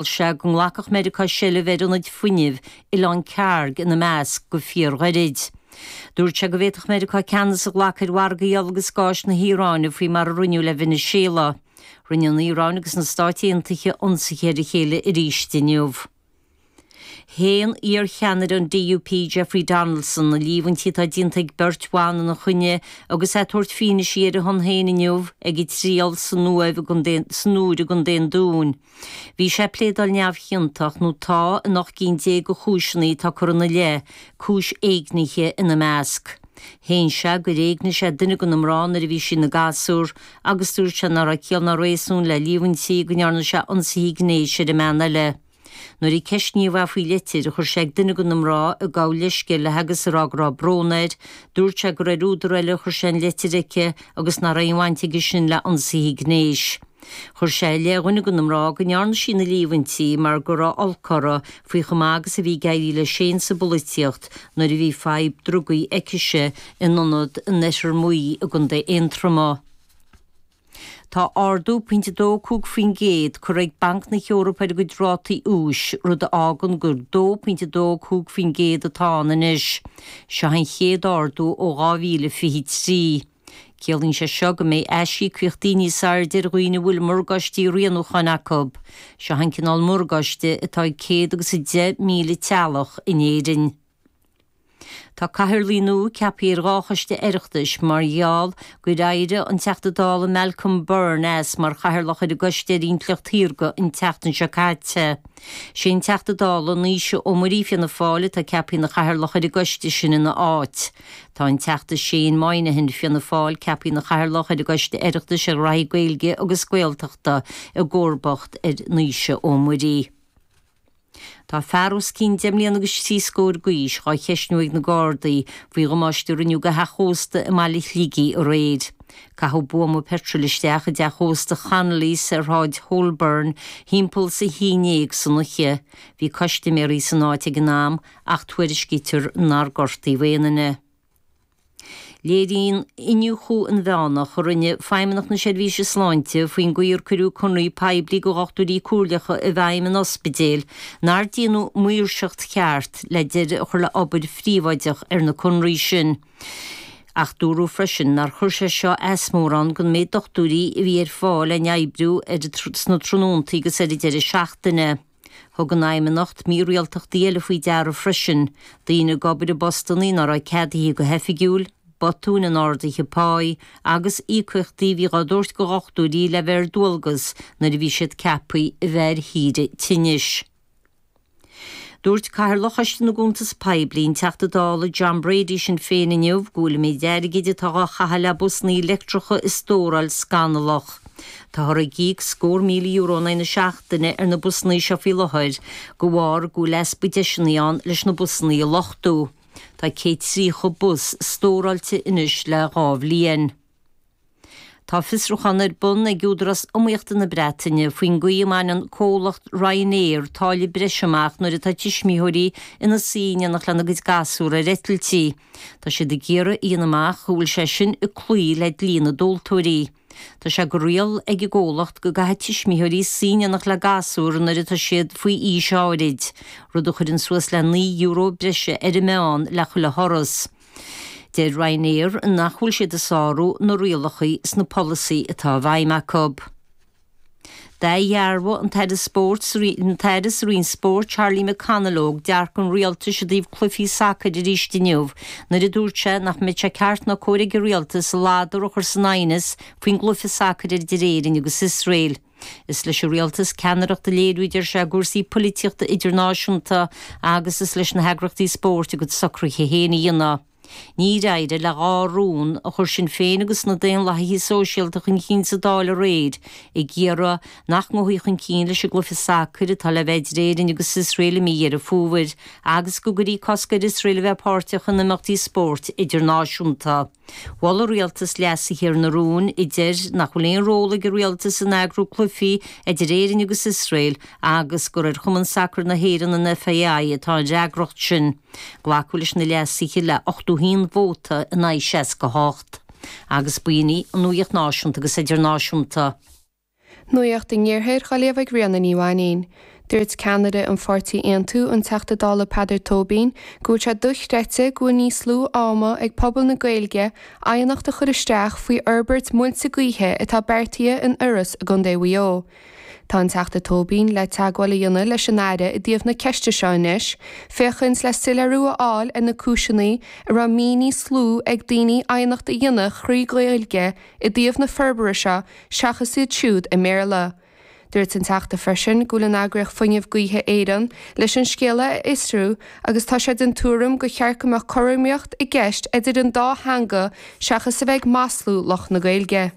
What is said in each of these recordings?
Gheall sé go nglacfadh Meiriceá seilbh ar ionaid fuinnimh, Oileán Kharg ina measc, go fíorghairid. Dúirt sé go bhféadfadh Meiriceá ceannas a ghlacadh ar mhargaí ola agus gáis na hIaráine faoi mar a rinneadh le Veiniséala. Rinne an Iaráin agus na Stáit Aontaithe ionsaithe ar a chéile arís inniu. Shéan iarcheannaire an DUP Jeffrey Donaldson na líomhaintí atá déanta ag beirt bhan ina choinne agus é ag tabhairt fianaise ar a shon féin inniu ag a thriail san Iúr i gContae an Dúin. Bhí sé ag pléadáil neamhchiontach, nó tá, in ocht gcinn déag de chúiseanna atá curtha ina leith, cúis éignithe ina measc. Shéan sé gur éignigh sé duine de na mná nuair a bhí sí ina gasúr agus dúirt sé nach raibh ciall ná réasún le líomhaintí go ndearna sé ionsaithe gnéis ar an mbean eile. Nuair a ceisníodh é faoi litir a chuir sé ag duine de na mná ag gabháil leithscéil léi agus ag rá go raibh brón air, dúirt sé gur ar údar eile a chuir sé an litir aici agus nach raibh aon bhaint aige sin le hionsaithe gnéis. Chuir sé i leith dhuine de na mná go ndearna sí na líomhaintí mar go raibh olc uirthi faoi chomh maith agus a bhí ag éirí leisean sa bpolaitíocht nuair a bhí fadhb drugaí aicise in ionad in Oirthear Maí i gContae Aontroma. Tá ardú.25% curtha ag Banc na hEorpa ar a gcuid rátaí úis, rud a fhágann gur 2.25% atá ann anois. Seo an chéad ardú ó 2023. Ciallaíonn sé seo go mbeidh aisíocaíochtaí níos airde ar dhaoine a bhfuil morgáistí rianúcháin acu. Seo an cineál morgáiste atá ag 110,000 teaghlach in Éirinn. Tá cathaoirligh nua ceaptha ar dhá choiste Oireachtais mar gheall gur éirigh an Teachta Dála Malcolm Byrne as mar chathaoirleach ar an gcoiste ar intleacht shaorga an tseachtain seo caite. Is é an Teachta Dála Naoise Ó Muirí, Fianna Fáil, atá ceaptha ina chathaoirleach ar an gcoiste sin ina áit. Tá an Teachta Shane Moynihan, Fianna Fáil, ceaptha ina Chathaoirleach ar an gCoiste Oireachtais ar Ghnóthaí Gaeilge agus Gaeltachta, i gcomharbacht ar Naoise Ó Muirí. Tá fear os cionn deich mbliana agus trí scór d'aois á cheisniú ag na Gardaí faoi dhamáiste a rinneadh do theach ósta i mbaile Shligigh aréir. Caitheadh buama peitril isteach i dteach ósta Chonnolly's ar Shráid Holborn thimpeall is a haon déag san oiche. Bhí custiméaraí san áit ag an am ach tuairiscítear nár gortaíodh aon duine. Léiríonn iniúchadh inmheánach a rinne Feidhmeannacht na Seirbhíse Sláinte faoin gcaoi ar cuireadh conarthaí poiblí do dhochtúirí comhairleacha i bhfeidhm in ospidéil nár déanadh maoirseacht cheart le deireadh a chur le obair phríobháideach ar na conarthaí sin ach dúradh freisin nár chuir sé seo as mórán don méid dochtúirí a bhí ar fáil le oibriú sna tráthnóntaí agus ar an deireadh seachtaine. Thug an Fheidhmeannacht mírialtachtaí eile faoi deara freisin, daoine ag obair i bpostanna nár raibh ceadaithe go hoifigiúil, botúin in ardaithe páí agus íocaíochtaí a bhíodh á dtabhairt do dhochtúirí le bheith ar dualgas nuair a bhí siad ceaptha a bheith ar shaoire tinnis. Dúirt Cathaoirleach Choiste na gCuntas Poiblí, an Teachta Dála John Brady Sinn Féin inniu go bhfuil an méid airgid atá á chaitheamh le busanna leictreacha a stóráil scannalach. Táthar ag íoc scór míle euro in aghaidh na seachtaine ar na busanna seo faoi láthair de bharr go bhfuil easpa deiseanna ann leis na busanna a luchtú. Tá 130 bus stóráilte anois le dhá bhliain. Tá fiosrúchán ar bun ag Údarás Iomaíochta na Breataine faoin gcaoi a mbaineann comhlacht Ryanair táille breise amach nuair atá tuismitheoirí ina suí in éineacht lena gcuid gasúr ar eitiltí. Tá siad ag iarraidh a dhéanamh amach an bhfuil sé sin ag cloí le dlí na dtomhaltóirí. Tá sé de riail ag an gcomhlacht go gcaithfidh tuismitheoirí suí in éineacht le gasúr nuair atá siad faoi aois áirid, rud a chuireann suas le naoi euro breise ar an meán le chuile thuras. Deir Ryanair nach bhfuil siad ag sárú na rialacha sa bpolasaí atá i bhfeidhm acu. D'athdhearbhaigh an tAire Spóirt an tAire sa Roinn Spóirt Charlie McConalogue dearcadh an Rialtais i dtaobh cluichí sacair arís inniu nuair a dúirt sé nach mbeadh sé ceart ná cóir ag an Rialtas a ladar a chur san aighneas faoin gcluiche sacair idir Éirinn agus Iosrael. Is leis an Rialtas ceannaireacht a léiriú a deir sé i gcúrsaí poilitíochta idirnáisiúnta agus is leis na heagraíochtaí spóirt a gcuid socruithe féin a dhéanamh. Níor éirigh le dhá rún a chuir Sinn Féin agus na Daonlathaithe Sóisialta chun cinn sa Dáil aréir ag iarraidh nach ngabhfaí chun cinn leis an gcluiche sacair atá le bheith idir Éirinn agus Iosrael i mí Dheireadh Fómhair agus go gcuirfí cosc ar Iosrael a bheith páirteach in imeachtaí spóirt idirnáisiúnta. Mhol an rialtas leasuithe ar na rúin a deir nach bhfuil aon ról ag an rialtas in eagrú cluichí idir Éirinn agus Iosrael agus gur ar Chumann Sacair na hÉireann, an FAI, atá an fhreagracht sin. Glacadh leis na leasuithe le 81 vóta in aghaidh 68. Agus b'in í an nuaíocht náisiúnta agus idirnáisiúnta. Nuaíocht an Iarthair dhá léamh ag Ríona Ní Mhainín. Dúirt ceannaire an pháirtí Aontú, an Teachta Dála Peadar Tóibín, go bhfuil sé dochreidte go bhfuil níos lú ama ag pobal na Gaeilge aighneacht a chur isteach faoi fhorbairt muilte gaoithe atá beartaithe in Iorras i gCondae Mhaigh Eo. Tá an Teachta Tóibín le teagmháil a dhéanamh leis an Aire i dtaobh na ceiste seo anois féachaint le soiléiriú a fháil ar na cúiseanna a raibh mí níos lú ag daoine aighneacht a dhéanamh thrí Ghaeilge i dtaobh na forbartha seo seachas iad siúd i mBéarla. Dúirt an Teachta freisin go bhfuil an eagraíocht Fuinneamh Gaoithe Éireann leis an scéala a fhiosrú agus tá sé den tuairim gur cheart go mbeadh cothromaíocht i gceist idir an dá theanga seachas a bheith ag maslú lucht na Gaeilge.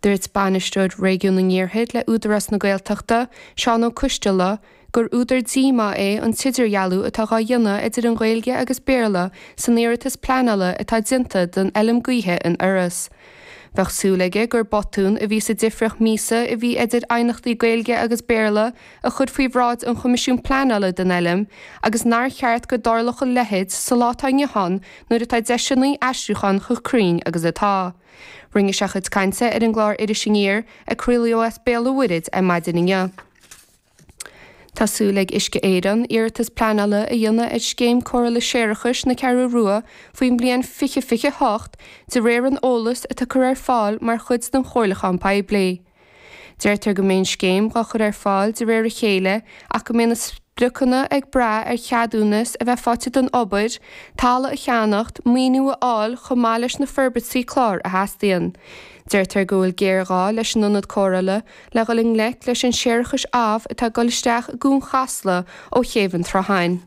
Dúirt Bainisteoir Réigiún an Iarthair le Údarás na Gaeltachta, Seán Ó Coistealbha, gur údar díomá é an t-idirdhealú atá dhá dhéanamh idir Gaeilge agus Béarla san iarratas pleanála atá déanta don Fheilm Gaoithe in Iorras. Bheadh súil aige gur botún a bhí sa difriocht míosa a bhí idir aighneachtaí Gaeilge agus Béarla a chur faoi bhráid an Choimisiúin Pleanála don Fheilm agus nár cheart go dtarlódh a leitheid sa lá atá inniu ann nuair atá deiseanna aistriúcháin chomh cruinn agus atá. Rinne sé a chuid cainte ar an gclár Iris Aniar a craolaíodh as Béal an Mhuirthead ar maidin inniu. Tá súil ag Uisce Éireann iarratas pleanála a dhéanamh ar Scéim Cóireála Séarachais na Ceathrú Rua faoin mbliain 2028 de réir an eolais atá curtha ar fáil mar chuid den chomhairliúchán poiblí. Deirtear go mbeidh an scéim dhá cur ar fáil de réir a chéile ach go mbeidh na spriocanna ag brath ar cheadúnas a bheith faighte don obair, talamh a cheannacht, maoiniú a fháil chomh maith leis na forbairtí cláir a theastaíonn. Deirtear go bhfuil géarghá leis an ionad cóireála le dhul i ngleic leis an séarachas amh atá ag dul isteach i gCuan Chasla ó chéibh an tSrutháin.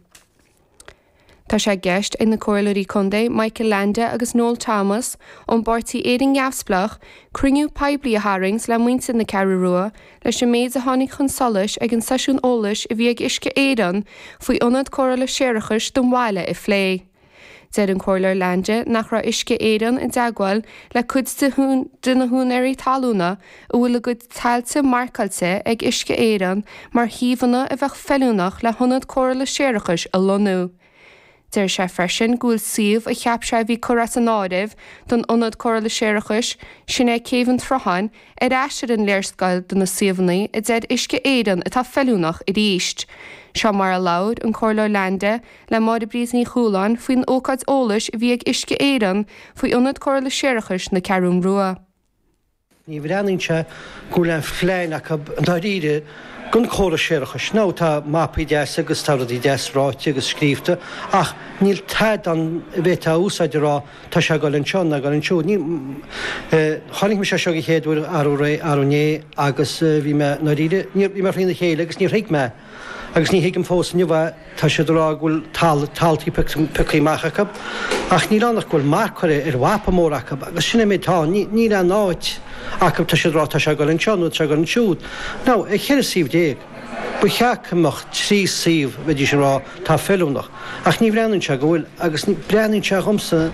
Tá sé i gceist ag na Comhairleoirí Contae Michael Leainde agus Noel Thomas ón bpáirtí Éirinn Neamhspleách cruinniú poiblí a tharraingt le muintir na Ceathrú Rua leis an méid a tháinig chun solais ag an seisiún eolais a bhí ag Uisce Éireann faoi Ionad Cóireála Séarachais don bhaile a phlé. Deir an Comhairleoir Leainde nach raibh Uisce Éireann i dteagmháil le cuid de na húinéirí talúna, a bhfuil a gcuid tailte marcáilte ag Uisce Éireann mar shuíomhanna a bheadh feiliúnach le hIonad Cóireála Séarachais a lonnú. Deir sé freisin go bhfuil suíomh a cheap sé a bhí curtha as an áireamh don Ionad Cóireála Séarachais, sin é Céibh an tSrutháin, ar ais ar an léarscáil de na suíomhanna a deir Uisce Éireann atá feiliúnach arís. Seo mar a labhair an Comhairleoir Leainde le Máire-Bríd Ní Chualáin faoin ócáid eolais a bhí ag Uisce Éireann faoi Ionad Cóireála Séarachais na Ceathrún Rua. Ní bhreathnaíonn sé go bhfuil aon phlean acu dáiríre don chóras séarachais. Now tá mapaí deasa agus tá rudaí deas ráite agus scríobhta ach níl tada ann a bhféadfá a úsáid a rá tá sé ag dul anseo ná ag dul ansiúd. Chonaic mé é seo an chéad uair arú ré arú inné agus bhí mé ndáiríre bhí mé thrína chéile agus níor thuig mé agus ní thuigim fós inniu é, tá siad ag rá go bhfuil taltaí pioctha amach acu ach níl ann ach go bhfuil marc curtha ar mhapa mór acu agus sin é an méid atá ann, níl aon áit acu, tá siad ag rá tá sé ag dul anseo nó tá sé ag dul ansiúd. Now, as cheithre suíomh déag, ba cheart go mbeadh trí suíomh, bheidís ag rá tá feiliúnach, ach ní bhreathnaíonn sé go bhfuil agus breathnaíonn sé dhomsa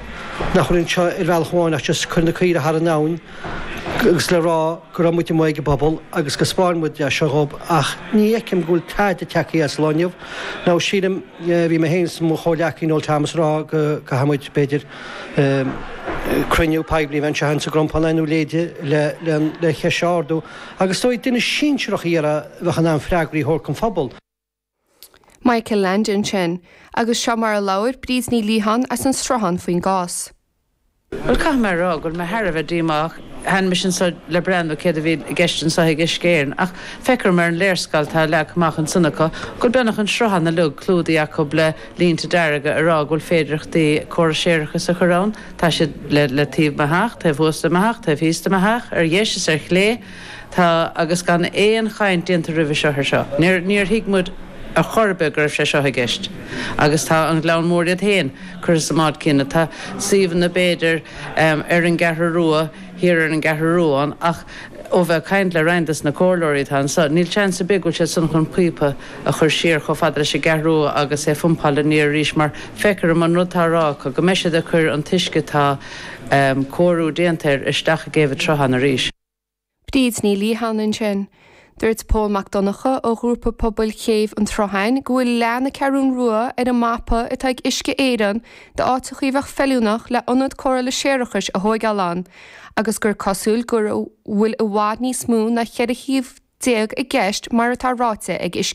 nach bhfuil anseo ar bhealach amháin ach just cuir na caoirigh thar an abhainn agus le rá, go raibh muid amuigh ag an bpobal agus go 'spáin muid leis seo dhób ach ní fheicim go bhfuil tada ag teacht as lá inniu nó sílim, bhí mé féin 's mo chomhleacaí Noel Thomas a rá go gcaithfidh muid, b'fhéidir, cruinniú poiblí a bheith anseo in sa gCrompán ar aon nós le an cheist seo a ardú agus is dóigh duine sinsearach a iarraidh a bheadh in ann freagraí a thabhairt don phobal. Michael Leainde sin agus seo mar a labhair Bríd Ní Liatháin as an Sruthán faoin gcás. Bhuel, caithfidh mé a rá go bhfuil mé thar a bheith díomách. Tháinig mise anseo le breathnú céard a bhí i gceist anseo ag Uisce Éireann, ach feictear dhom ar an léarscáil atá leagtha amach ansin acu go bhfuil beagnach an Sruthán uilig clúdaithe acu le línte dearga ag rá go bhfuil féidireachtaí córas séarachais a chur ann. Tá siad le taobh mo theach, taobh thuas de mo theach, taobh thíos de mo theach, ar dheis is ar chlé. Tá, agus gan aon chaint déanta roimhe seo air seo. Níor, níor thuig muid ar chor ar bith go raibh sé seo i gceist. Agus tá an Gleann Mór iad féin curtha sa mbád céanna. Tá suíomhanna b'fhéidir ar an gCeathrú Rua, thiar ar an gCeathrú Rua ann, ach ó bheith ag caint le roinnt dos na comhairleoirí atá anseo, níl seans ar bith go bhfuil siad san chun píopa a chur siar chomh fada leis an gCeathrú Rua agus é phumpáil aniar arís mar feictear dhom an rud atá á rá acu, go mbeidh siad ag cur an t-uisce atá cóiriú déanta air isteach i gCéibh a' tSrutháin arís. Bríd Ní Liatháin ansin. Dúirt Pól Mac Donnacha ó Ghrúpa Pobail Chéibh an tSrutháin go bhfuil leath na Ceathrún Rua ar an mapa atá ag Uisce Éireann d'áiteachaí a bheadh feiliúnach le ionad cóireála séarachais a thóigeáil ann agus gur cosúil go bhfuil i bhfad níos mó ná 14 shuíomh i gceist mar atá ráite ag Uisce